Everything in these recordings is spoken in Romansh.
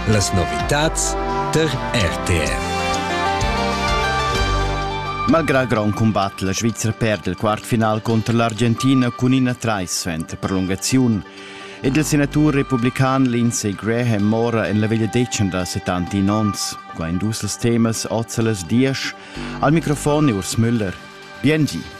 Las novitads tar RTR. Malgrà grond cumbat, la Svizra perd il quartfinal contro l'Argentina cun ina traissent prolungaziun. Ed il senatur republican Lindsey Graham mora en la veglia decen da 71 onns. Qua in dus temas oz a las 10. Al microfon Urs Müller. Biengi.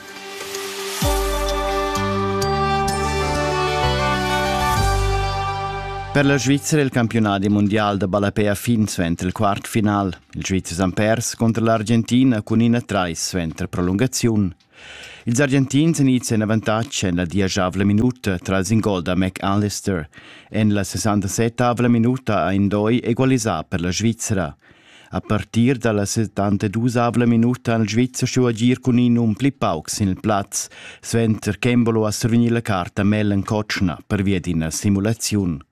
Per la Svizzera è il campionadi mondial da ballapè a fin suenter il quart final. Il Svizzers han pers contro l'Argentina cun ina trais suenter prolungaziun. Ils Argentins han ids en avantatg en la dieschavla minuta tras in gol da McAllister. En la 67 minuta ha Indoi egualisà per la Svizzera. A partir dalla settantedusavla minuta ha il Svizzer stuu agir cun in um pli pauc sin il plaz, suenter ch'Embolo ha survegniu la carta Mellen Kotschna pervia d'ina simulaziun.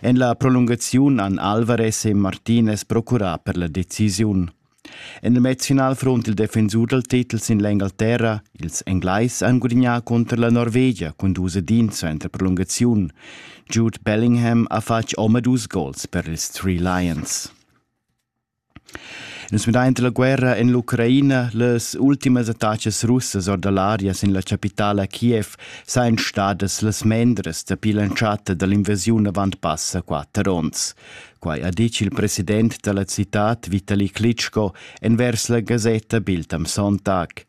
En la prolungaziun han Alvarez e Martinez procurà per la decisiun. En il Nationalfront il defensur dal titel sin l'Engalterra, ils Englais han gudignà contro la Norvegia cun dus edin suenter prolungaziun. Jude Bellingham ha fatg omadus gols per ils Three Lions. Nus müdaint la guerra in l'Ucraina, las ultimas attachas russas or da l'aria sin la chapitala Kiev sajan stadas las mendras dapi l'entschatta da l'invasiun avant passa quatter ons. Quai ha ditg il president da la citad Vitali Klitschko envers la gasetta Biltam Sontag.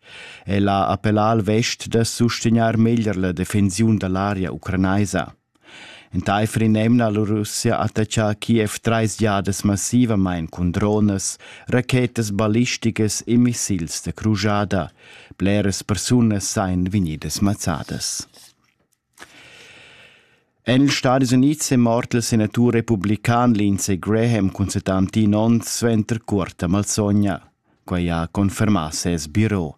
El ha appellà al vest da sustegnar meglier la defensiun da l'aria ucranaisa. Entaifer in'emna ha la Russia attaccà Kiev trais giadas massivamain cun dronas, rachetas ballisticas e missils da crujada. Bleras persunas sajan vegnidas mazzadas. En ils Stadis Unids è mort il senatur republican Lindsey Graham cun 71 onns suenter cuorta malsogna. Quei ha confermà ses biro.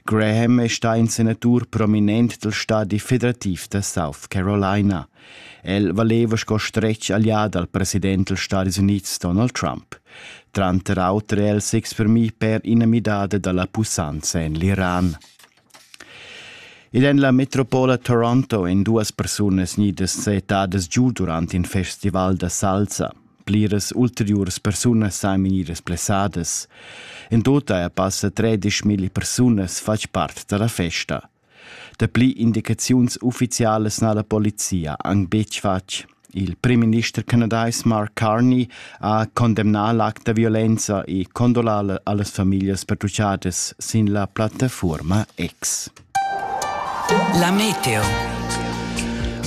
Graham è stà in senatur prominent dal stadi federativ da South Carolina. El valeva sco stretg allià dal president dals Stadis Unids Donald Trump. Tranter auter è el s'exprimì per ina midada da la pussanza en l'Iran. Ed en la metropola Toronto èn duas persunas gnidas settadas giu durant in festival da salsa. Pliras ulteriuras persunas san vegnir blessadas. In total er passa tredisch milli persunas fatg part da la festa. Dapli indicaziuns uffizialas n'ha la polizia anc betg fatg. Il primminister canadais Mark Carney ha condemnà l'act da violenza e condolà a las famiglias pertutgadas sin la plattafuorma X. La meteo.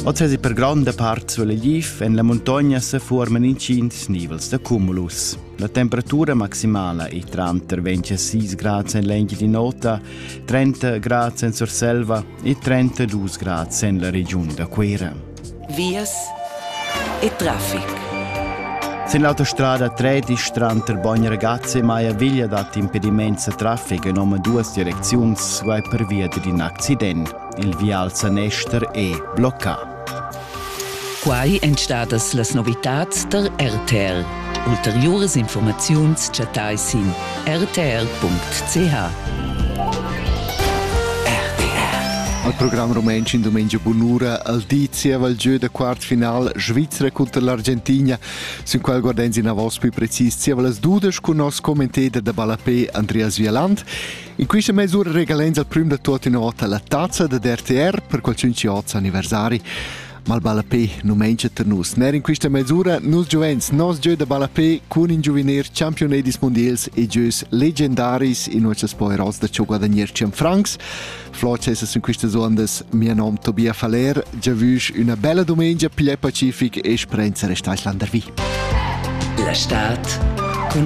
Oz è per gronda part sulla GIF en la muntogna se forman intgins nivels da cumulus. La temperatura maximala è tranter 26 grad en l'Engiadin'Ota, 30 grad en Surselva e 32 grad en la regiun da Cuera. Vias e traffic. Sin l'autostrada tredisch tranter Bogn Ragazzi e Maiaviglia dat impediments a traffic in oma duas direcziuns guai pervia d'in accident. Il vial Sanester è bloccà. Quai èn stadas las novitads tar RTL. Ulteriuras infurmaziuns chattai sin rtr.ch. Al program rumantsch in dumengia bunura al di zieva il gieu da quart final Svizra cunter l'Argentina, sün qual guardens inavos pü precis zieva las dudesch cun nos commentader da ballapé Andreas Vialand. In quista mesura regalens al prüm da tuot innovà la tazza da RTR per qualchün chi hoz anniversari. Mal ballapé nu mengia tar nus. Ner in quista mesura nus giuvens nos gieu da ballapé cun in giuvenil championedis mondials e gieus legendaris in nossas poeros da ciò guadagner cen francs. Flot es in quistas ondas mia nom Tobia Faller, già vüsch üna bella domenica piglier pacific e sprenza restais landervi. La Stadt cun